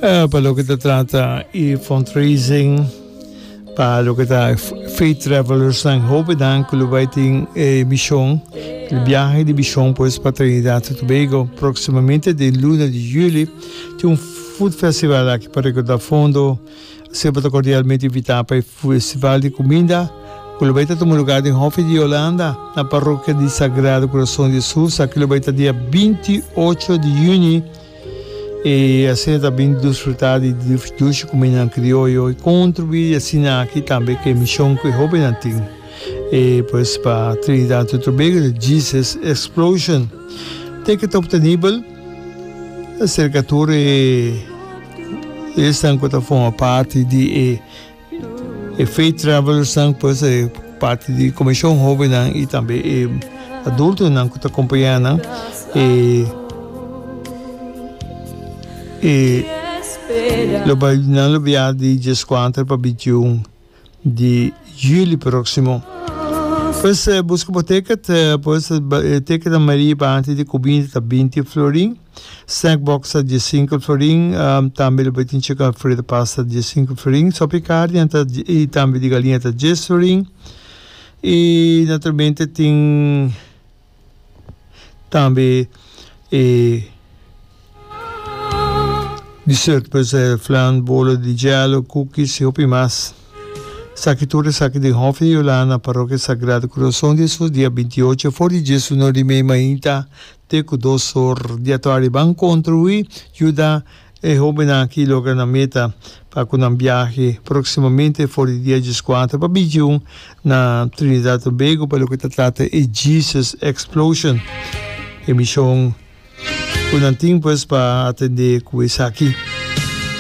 Eh, pa lo que te trata y fundraising, pa lo que está Faith Travelers, nan hopi dan que lo vai tin eh, misión, el viaje de misión pues pa Trinidad y Tobago. Próximamente den luna de juli tin un food festival aki pa recaudar fondo. Así bo ta cordialmente invitá pa e festival de cuminda cu lo bai ta tuma lugar den Hof di Yolanda, na Parroquia di Sagrado Corazón di Jesús. Aki lo bai ta dia binti ocho di juni. E asina ta bin disfrutá di dushi kumindanan krioyo i kontribuí di asina aki tambe ku e mishon ku e hóbennan tin. E pues pa Trinidad y Tobago ta Jesus Explosion. Te ke ta optenibel serka tur e esnan ku ta forma parti di e. E Faith Travellers nan pues e parti di Komishon Hobennan i tambe e adultonan ku ta kompañá nan e e lo bai nan lo bia di djes kuater pa bintiun di juli próksimo. Pues buska bo tèkèt pues tèkèt na Maria i parti di kuminda ta binti florin. Snack box ta dies sinkel florin, tambe lo bay tin chik alfredo pasta dies sinkel florin, sopi carne a ta y tambe di galinha ta dies florin y naturalmente tin tambe e dessert pues e flan, bolo di jello, cookies y hopi mas. Esaki tur esaki den hof di Yolanda, parokia Sagrado Corazon di Hesus, dia binti ocho for di dies uno di mei mainta. Te ku dos or di atardi ban kontribuí yuda e hóbennan akí logra nan meta pa ku nan biahe próksimamente for di dia dieskuater pa Bijiun na Trinidad Tobago pa loke ta trata e Jesus Explosion. E mishon ku nan tin pues pa atendé ku esaki.